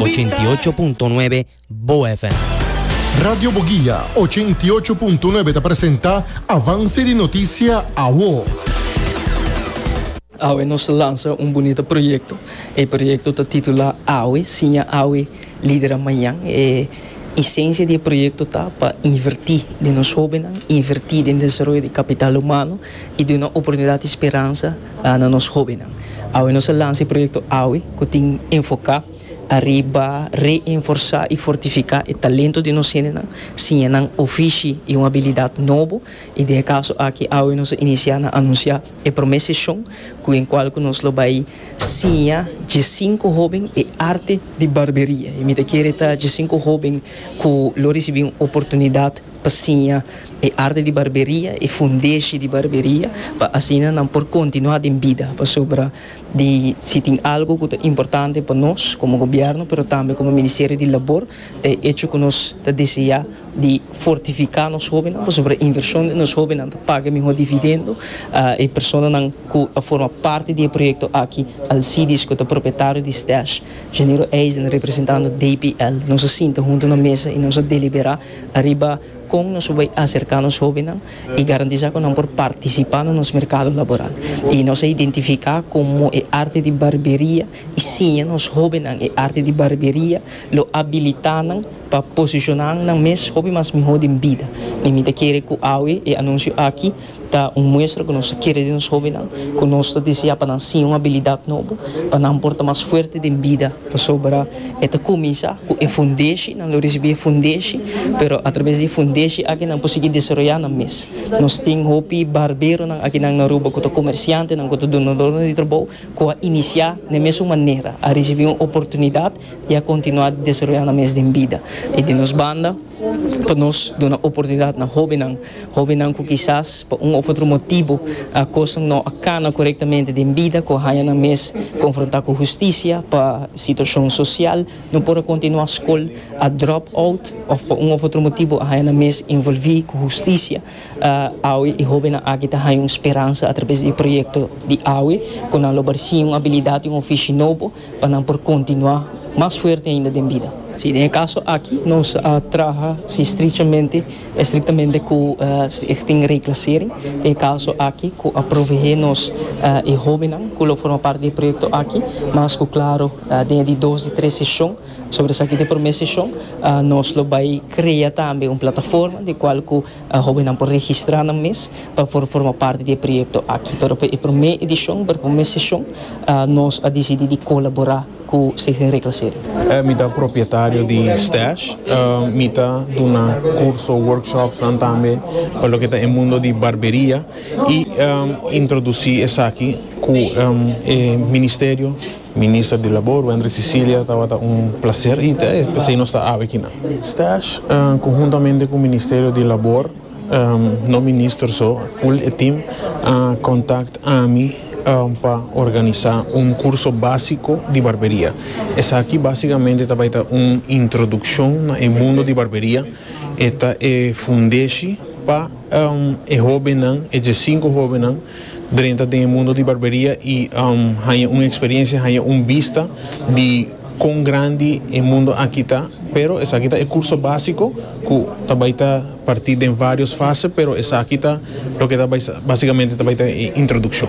Ochenta i ocho punto nuebe Bo FM. Radio Boguia ochenta i ocho punto nuebe ta presenta Avance di Noticia Awo. Awe nos ta lansa un bunita proyecto. E proyecto ta titula Awe, Siña Awe, Lidera Mañan. E esencia di e proyecto ta pa inverti den nos hobennan, inverti den desaroyo di capital humano y duna oportunidad y speransa. na nos hóbennan. Awe nos a lansa e proyekto awe ku tin enfoká ariba reenforsá i fortifiká e talento di nos hendenan, siña nan ofishi i un abilidat nobo, i den e kaso aki awe nos a inisiá na anunsiá e promé seshon ku den kual ku nos lo bai siña dje sinku hóben e arte di barberia. Mi ta kere ta dje sinku hóben ku lo risibí un oportunidat. pa siña e arte di barberia, e fundeshi di barberia, pa asina nan por kontinuá den bida, pasobra di si tin algu ku ta importante pa nos komo gobièrnu, pero tambe komo Ministerio di Labor, ta e echo ku nos ta deseá di fortifiká nos hóbennan, pasobra e invershon den nos hóbennan ta paga mihó dividendo, e personanan ku a forma parti di e proyekto aki, Alcides ku ta propietario di Stash, Janeiro Eisen representando DPL, nos a sinta huntu na mesa i nos a deliberá. Ariba kon nos por bai aserká nos hóbennan i garantisá ku nan por partisipá na nos merkado laboral. I nos a identifiká komo e arte di barberia i siña nos hóbennan e arte di barberia lo abilitá nan pa posishoná nan mes hopi mas mihó den bida. Mi ta kere ku awe e anunsio aki Ta un muestra ku nos ta kere den nos hóbennan ku nos ta deseá pa nan siña un abilidat nobo pa nan por ta mas fuerte den bida, pasobra e ta kuminsá ku e fundeshi, nan lo risibí e fundeshi, pero atrabes di e fundeshi aki nan por sigui desaroyá nan mes. Nos tin hopi barberonan aki nan na Aruba ku ta komersiantenan, ku ta dunadornan di trabou, ku a inisiá den mesun manera, a risibí un oportunidat y a continua desaroya nan mes den bida. Y di nos banda pa nos duna oportunidad na hobennan, hobennan cu kisas pa un of otro motibo cosnan no a cana corectamente den bida cu a haya nan mes confronta cu husticia pa situacion social, no por a continua scol, a drop out of pa un of otro motibo a haya nan mes involvi cu husticia. Awe e hobennan aki ta haya un speransa a traves di e proyecto di awe cu nan lo barci un abilidad y un ofishi nobo. pa nan por kontinuá mas fuerte ainda den bida. Sí, den e kaso aki nos a traha sí estrichamente, estrictamente ku Stichting Reclassering, den e kaso aki ku a proveé nos e hóbennan ku lo forma parti di e proyekto aki, mas ku klaro den e di dos di tres seshon, pasobra esaki ta e promé seshon, nos lo bai krea tambe un plataforma di kual ku. Hobennan por registrá nan mes pa por forma parti di e proyekto aki. Pero pa e promé edishon, pa e promé seshon, nos a disidí di kolaborá ku Stichting Reclassering. Mi ta propietario di Stash. Mi ta duna kurso, workshopsnan tambe pa loke ta e mundo di barberia i introdusí esaki ku e Ministerio Minister di Labor, Wendrick Cecilia, Tabata un placer ita e p'esei nos ta awe kinan. Stash, conjuntamente cu Ministerio di Labor, no minister so, full e team, a contact ami pa organisa un curso basico di barberia. Esaki basicamente ta bay ta un introduccion na e mundo di barberia, e ta e fundeshi pa e hobennan, e dje cinco hobennan, Drenta den e mundo di barberia y haña un experiencia, haña un bista di con grandi e mundo aki ta. Pero esaki ta e curso basico cu ta bay ta parti den varios fase, pero esaki ta loke ta bay basicamente ta bay ta e introduccion.